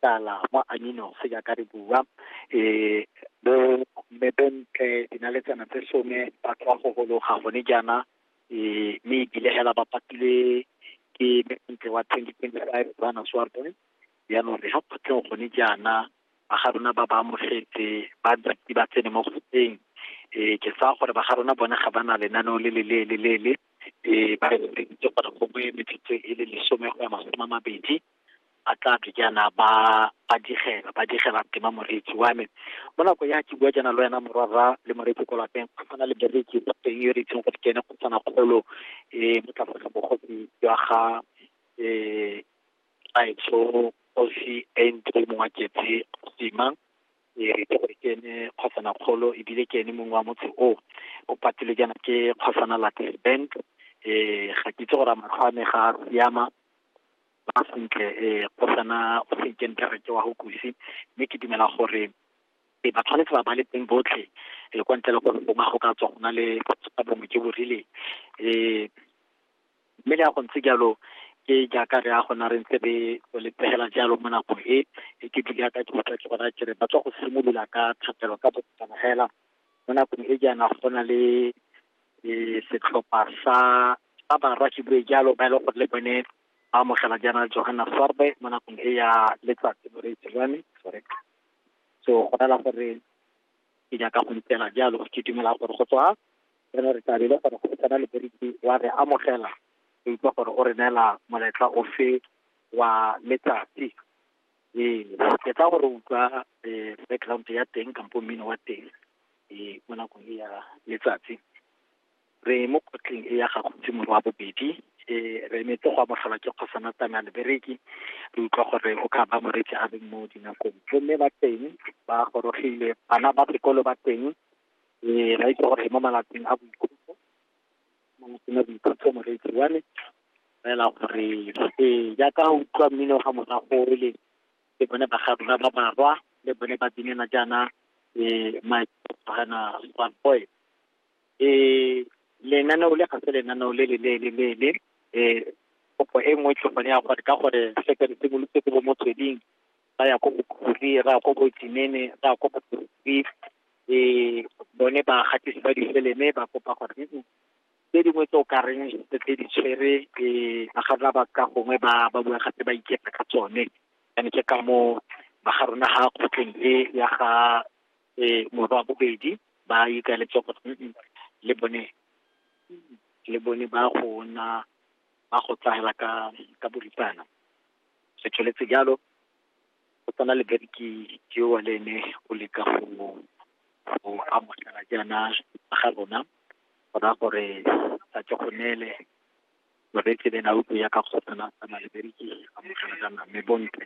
tala mo aminos jaaka re bua um bo mmebentle dinaletsana tse some ba tswa go gologa gone jaana um mme ebile hela ba patilwe ke mmebentle wa twenty twenty five bana swarteng jaanong re ga kgotleng gone jaana ba ga rona ba ba amogetse ba ntsi ba tsene mo kgotleng um ke tsaya gore ba ga rona bone ga ba na lenaneo le le leele leele um ba re gore gongwe metsotso e le lesome go ya masome a mabedi ba tla tle jaana ba ba digela ba digela ke ma moretsi wa me mo nako ya ke bua jaana le wena morara le moretsi ko lapeng go tshwana le bereki ba teng yo re itseng go kene go tsana kgolo um mo tlase ga bogosi jwa ga um aetso osi entry mongwa ketse sima e re itse gore ke ene kgosana kgolo ebile ke ene mongwe wa motse o o patile jaana ke kgosana late bank um ga ke itse gore a matlho a me ga a siama ba sentle um go sana o senke nkare ke wa go kusi mme ke dumela gore e ba tshwanetse ba ba le teng botlhe e kwa ntle le gore bo go ka tswa go na le ka bongwe jo bo rileng um mme le ya go ntse jalo ke jaaka re ya gona re ntse re le pegela jalo mo nakong e e ke dile ka ke utlwa ke gona kere ba tswa go simolola ka thapelo ka bokana fela mo nakong e jaana go na le setlhopha sa ba barwa ke bue jalo ba e leng gore le bone ba amogela jaana Johanna Sorbe mo nakong e ya letsatsi mo re tsilwane sorry so go rela gore ke nyaka go ntela jalo ke dumela gore go tswa re ne re tabile gore go tsena le beriki wa re amogela re utlwa gore o re neela moletla ofe wa letsatsi ee ke tla gore utlwa um background ya teng kampo mmino wa teng um mo nakong e ya letsatsi re mo kgotleng e ya ga Khutsimogo wa bobedi, ee, re emetse go amogelwa ke Kgosa Natane a le bereki , re utlwa gore o ka ba morwetse a le mo dinakong. Bo mme ba teng, ba gorogile, bana ba sekolo ba teng, ee, ba itse gore mo malatsing a boikhutso, mo malatsing a boikhutso morwetse wa me, fela gore, ee, jaaka o utlwa mmino fa morago o le, ke bone ba ga rona ba barwa, le bone ba binela jaana, ee, my Setswana Boys. lenaneo le ga se lenaneo le le leele leele kopo e nngwe tlhopho ya gore ka gore se ka simolotse ko bo motsweding ba ya ko bokhuri ra ko botsinene ra ko bokhuri bone ba gatisi ba difeleme ba kopa gore tse dingwe tse o ka reng tse di tshwere ba ga rona ba ka gongwe ba ba bua gape ba iketla ka tsone and ke ka mo ba ga rona ga kgotleng e ya ga morwa wa bobedi, ba ikaeletse go le bone, le bone ba go nna, ba go tshela ka, ka boripana. Se tsweletse jalo, go tsena Leberetiki yo wa le ene o leka go mo, go amogela jaana ba ga rona, go raya gore a tle go neele Moretlebeng a utlwe jaaka kgotsana a tsamaya Leberetiki, amogela jaana mme Bontle.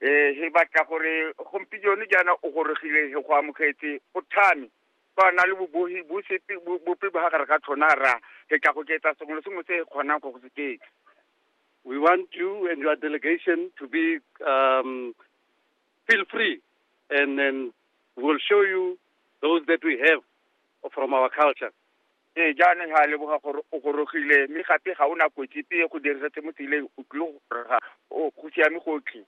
um he batla gore gompieno jaana o gorogile he go amogetse o thame fa na le bobohi bo sepe bope ba gare ga tlhona ra re tla go ketsa sengwe le sengwe se e kgonang go go se ketsa we want you and your delegation to be um, feel free and then we'll show you those that we have from our culture Ee, jaanong ga a leboga gore o gorogile, mme gape ga o na kotsi epe e go dirisetse mo tseleng, o tlile go goroga. O, go siame gotlhe.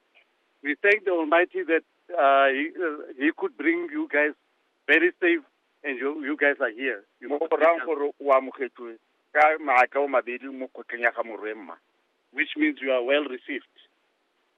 We thank the Almighty that uh, he, uh, he could bring you guys very safe and you, you guys are here. You mo go rang gore o amogetswe ka maatla o mabedi mo kgotleng ya ga morwe mma. which means you are well received.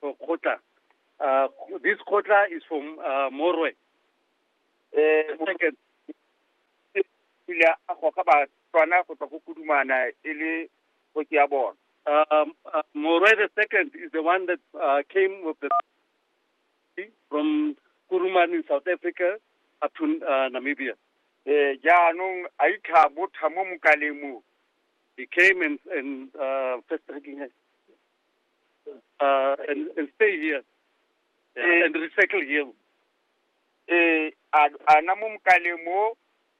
kgotla uh, this kgotla is for uh, morwe eh, second ile a goga batswana go tswa go kudumana e le kgoki ya bona um, uh, morwe the second is the one that uh, came with the from kuruman in south africa up to uh, namibia eh jaanong a itlha botha mo mokaleng mo he came and, and uh, first uh, and, and stay here yeah, Eh. and recycle here. eh a a na mo mokale mo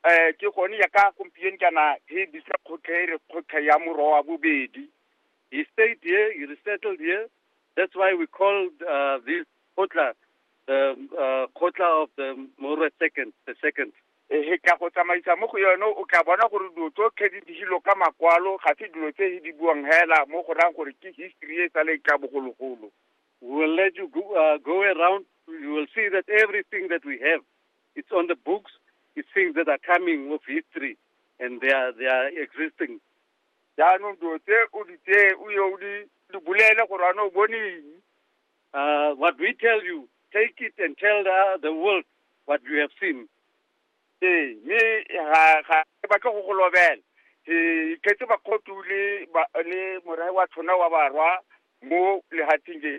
eh ke gone ya ka gompieno kana he bisa kgotlhe e re kgotlhe ya moro wa bobedi He stayed here, he resettled here. That's why we called uh, this Kotla, the uh, Kotla of the Moro second, the second. He tla go tsamaisa mo go yone, o tla bona gore dilo tsotlhe di digilwe ka makwalo, ga se dilo tse he di buang hela mo go rayang gore ke history e sa le ka bogologolo. We will let you go, uh, go around, you will see that everything that we have, it's on the books, it's things that are coming of history and they are, they are existing. Jaanong dilo tse o di tseye o ye o di di bolele gore ana o bone eng, Uh, what we tell you, take it and tell the, the world what you have seen. ee mme ga ga ke batle go go lobela ee iketse bakgotu le ba- le morae wa tshona wa barwa mo lehatsheng le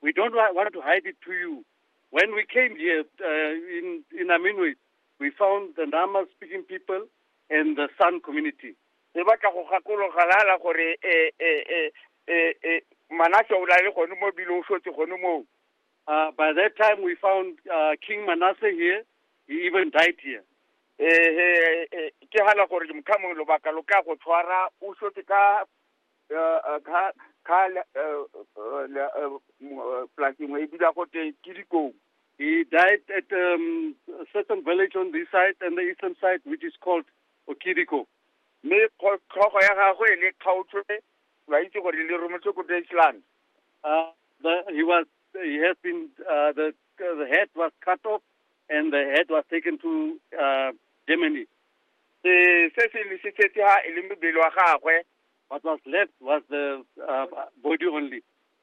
We don't wa- want to hide it to you. When we came here uh, in, in Aminway, we found the Nama speaking people and the San community. e batla go gakologalala gore e e e e e manase o lale gone mo ebile o shotse gone moo uh, by that time we found uh, king manasseh here he even died here ee ke gana gore mokhamong lobaka lo ka go tshwara o shotse ka uh, uh, ka ka polasengwe e bida gote ke dikong He died at um, a certain village on this side and the eastern side, which is called o kidiko mme kgo- tlhogo ya gagwe le kgaotswe ba itse gore le rometswe ko Deutschland Uh, the, he was he has been uh, the the head was cut off and the head was taken to uh, Germany. se se se lesitse ha e le mebele wa gagwe What was left was the uh, body only.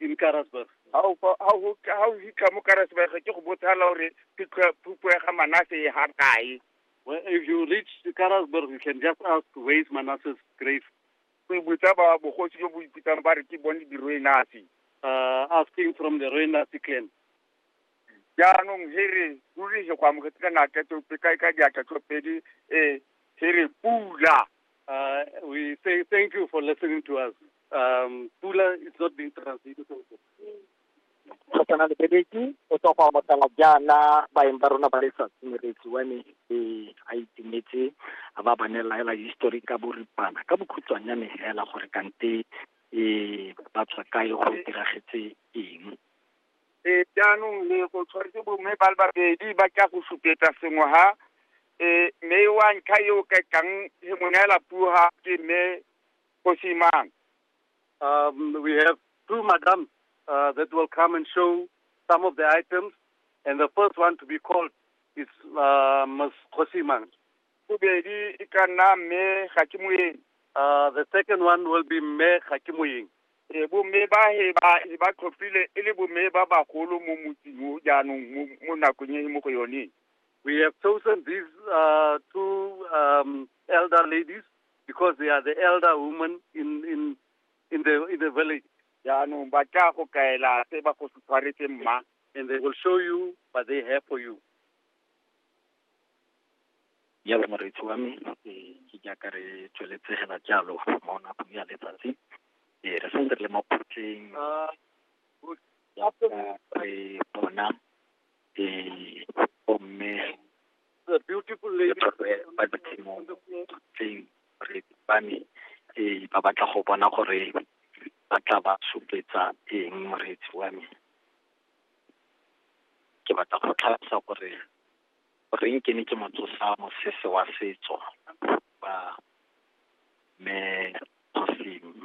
in Karasburg. ha o fa- ha o ha o fitlha mo karasebege ke go botshala gore phitlho- phupo ya ga manase e ha kae Well, if you reach Karasburg, you can just ask where is Manasseh's grave, o e botsa ba bogosi jo bo ipitsang ba re ke bone diroenasi uh, asking from the Roenasi clan. jaanong he re ruri he go amogetse ka natla tsope ka ka diatla tsopedi um he re pula Uh, we say thank you for listening to us. Um, Pula is not being translated. go tshwana le bebeki o tswa go amogela jaana baeng ba rona ba letsatsi moretsi wa me e a itumetse a ba bane laela history ka boripana ka bokhutshwanyane fela gore kante um ba tswa kae go diragetse eng e jaanong le go tshwanetse bomme ba le babedi ba tla go supetsa sengwe ha e mme wa ntlha yo ka tlang he mo neela puo ha ke mme Kgosi mang? Um, we have two madam uh, that will come and show some of the items, and the first one to be called is uh, Ms. Kosimang. Uh, the second one will be Me Hakimoying. Eh, bomme ba he ba he ba tlhophile e le bomme ba bagolo mo motsing o jaanong mo nakong e mo go yone we have chosen these uh, two um, elder ladies because they are the elder women in in in the in the village jaanong ba tla go kaela se ba go se tshwaretse mma and they will show you what they have for you jalo moreetsi wa me eh, ke jaaka re tsweletse fela jalo mo nakong ya letsatsi eh, re santse re le mo phutleng Ah, jaaka re bona eh, bomme The beautiful lady. Ke tshwere ba ditshimo tse re ba me eh, ba batla go bona gore ba tla ba supetsa eng moreetsi wa me ke batla go tlhalosa gore goreng ke ne ke motsosa mosese wa setso ba me